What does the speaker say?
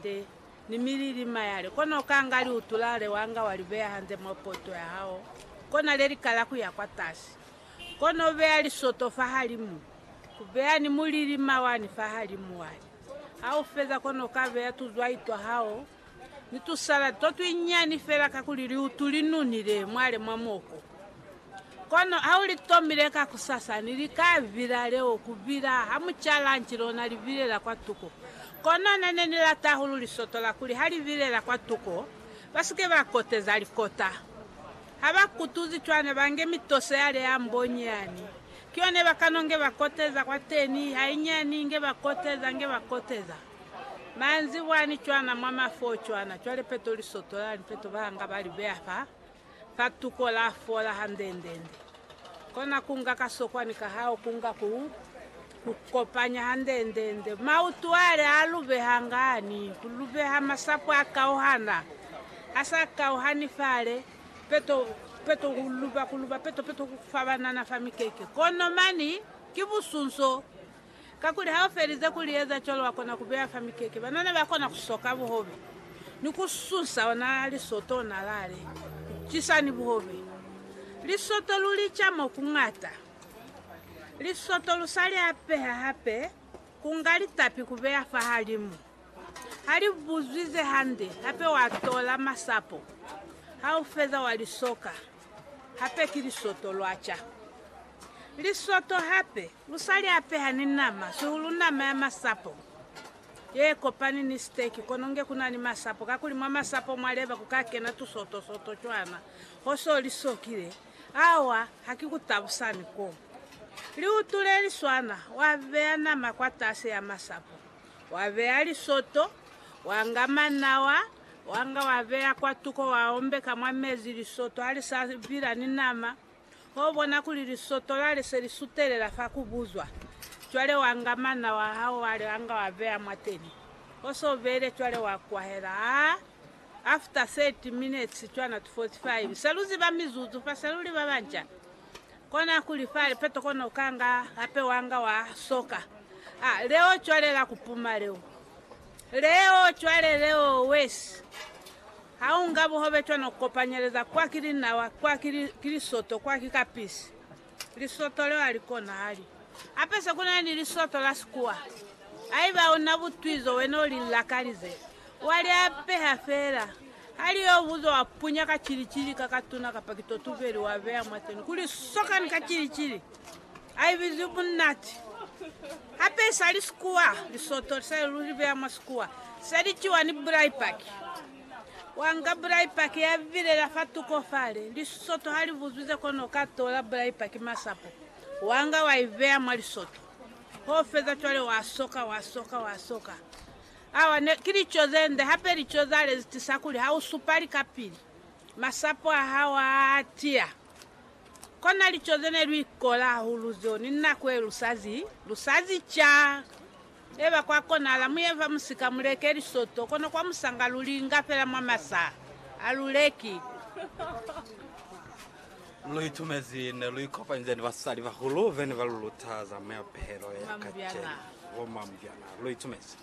te, ni milili mayale, kono ukanga liutulale wanga wa libeya hanze mwa poto ya hao, kona lelikala kuya kwatasi, kono ubeya lisoto fahalimu, ubeya ni mulili mawani fahalimu wali. Haufeza kono ukabeya tuzwai twa hao ni tusaladi to twinyani fela kakuli liutu linunile mwale mwa moko. Kono ha u li tomile kakusasa, ni li ka vila leo ku bina ha mu ca lanci lona li bilela kwa tuko. Kono na ne ni lata hahulu lisoto la kuli ha li bilela kwa tuko, ba si ke ba koteza likota. Ha ba kutuzi cwana, ba nge mitoso ya le ya mbo nyani. Ki yone ba kano nge ba koteza kwateni, hainyani, nge ba koteza, nge ba koteza. Manzibwani cwana, mwa mafoo cwana, cwale peto lisoto la ni peto ba nga ba li beya fa. Katuko la fola handendende. Kona ku nga kasokwani ka hao ku nga ku ku kopanya handendende. Mautwale a lubeha ngani? Ku lubeha masapo a kauhana, a sa kauhani fale, peto, peto, ku luba, ku luba, peto, peto, ku fabanana fa mikeke. Kono mani ki busunso. Kakuli ha u felize ku li eza cwalo, wa kona ku beya fa mikeke. Banana ba kona ku soka buhobe ni ku susa ona lisoto ona lale cisa ni buhobe. Lisoto lu li ca mo ku ñata. Lisoto lu sa li apeha hape, ku nga litapi ku beya fahalimu. Ha li buzwi ze hande, hape wa tola masapo ha u feza wa li soka. Hape ki lisoto lwa ca. Lisoto hape Lu sa li apeha ni nama, sihulu nama ya masapo ye kopani ni siteki, kono nge ku na ni masapo, kakuli mwa masapo mwa leba ku ka kena tusoto-soto cwana ho so li sokile. Awa, ha ki ku tabusa ni ko. Liutu le li swana, wa beya nama kwatasi ya masapo, wa beya lisoto, wa nga manawa, wa nga wa beya kwatuko, wa ombeka mwa mezi, lisoto ha li sa bila ni nama. Ho bona kuli lisoto lale se li sutelela fa ku buzwa. Cwale wa nga mana wa hao wale wa nga wa beya mwateni. Ho se u beile cwale wa kwahela. Ha after 30 minutes cwana to 45, se lu ziba mizuzu fa se lu li ba banca. Kona kuli fa lipeto kona u ka nga hape wa nga wa soka. Ha leo cwale la ku puma leo. Leo cwale leo wesi. Ha u nga buhobe cwana u kopanyeleza kwa ki linawa, kwa ki, ki lisoto, kwa ki kapisi. Lisoto leo alikona hali. Hape se ku na ni lisoto la sikuwa. Haiba u na butwi zo wena u li lakalize, wa li apeha fela. Ha li yo buzo wa punya ka cili-cili ka katuna kapa ki totuveli wa beya mwateni kuli sokani ka cili-cili. A ibizwi bunati. Hape sa li sikuwa, lisoto li sa li luli bea mwa sikuwa. Se li ciwa ni bulai paki. Wa nga bulai paki ya bilela fa tuko fale, lisoto ha li buzwize kono ka tola bulai paki masapo, wa nga wa i bea mwa lisoto. Ho feza cwale wa soka, wa soka, wa soka. Awa ne, ki lico ze nde, hape lico za lezi tisa kuli ha u supa likapili, masapo a hao a tiya. Kona lico ze ne lu ikola hahulu zeo ni nako ye lu sa zi, lu sa zi ca. Eba kwa konahala mu ye fa musika mu leke lisoto, kono kwa musanga lu li inga fela mwa masaha. Ha lu leki. Lu itumezi ne lu ikopanize ni basali bahulu be ne ba lu luta za meapelo ya kacenu. Bo mamubyana, lu itumezi.